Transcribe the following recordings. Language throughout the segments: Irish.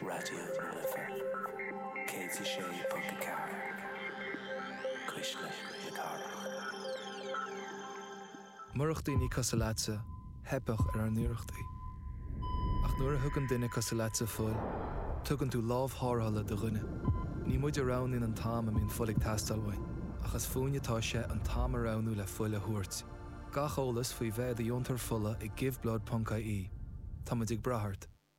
Raidió na Life 106.4, Cuisle na Cathrach. Murach daoine cosúil leatsa, theipfeadh ar ár n-iarrachtaí. Ach nuair a thugann duine cosúil leatsa fuil, tugann tú lámh tharrthála do dhuine. Ní muid a roghnaíonn an t-am a mbíonn fuil ag teastáil uainn, ach is fúinn atá sé an t-am a roghnú le fuil a thabhairt. Gach eolas faoi bheith i do dheontóir fola ag Giveblood ponc ie. Táimid ag brath ort.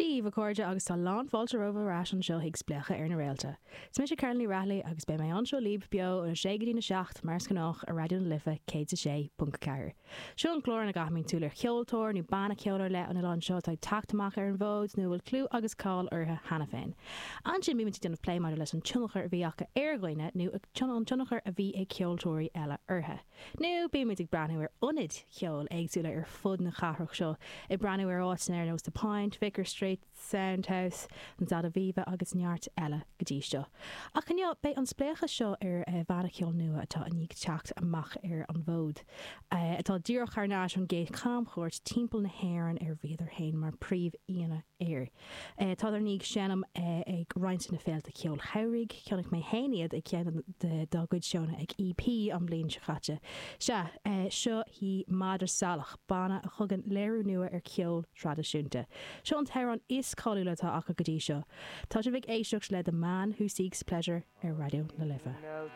Dé bhur mbeatha a chairde agus tá lán fáilte romhaibh ar ais anseo chuig Spléachadh ar na Réalta. Is mise Carolyn Ní Raghallaigh agus beidh mé anseo líb beo ón 6 go dtí na 7, mar is gnách, ar Raidió na Life 106.4. Seo an clár ina gcaithimid súil ar cheoltóir nó banna ceoil ar leith ón oileán seo atá ag teacht amach ar an bhfód nó a bhfuil clú agus cáil orthu cheana féin. Ansin bímid ag déanamh plé maidir leis an tionchar a bhí acu ar dhaoine nó an tionchar a bhí ag ceoltóirí eile orthu. Nó bímid ag breathnú ar ionaid cheoil éagsúla ar fud na cathrach seo, ag breathnú ar áiteanna ar nós The Point, Vicar Street, Sound House, an Stad Aviva agus neart eile go dtí seo. Ach inniu, beidh an spléachadh seo ar bhanna ceoil nua atá i ndiaidh teacht amach ar an bhfód, atá díreach tar éis ón gcéad chamchuairt timpeall na hÉireann ar bhíodar féin mar phríomh-aíonna air. Tá siad i ndiaidh seinm ag roinnt de na féilte ceoil shamhraidh. Chonaic mé féin iad ag ceann dá gcuid seónna ag EP an bhliain seo caite. Sea, seo é Madra Salach, banna a thugann léiriú nua ar cheol traidisiúnta. Seo an t-amhrán is cáiliúla atá acu go dtí seo. Tá sibh ag éisteacht le The Man Who Seeks Pleasure ar Raidió na Life.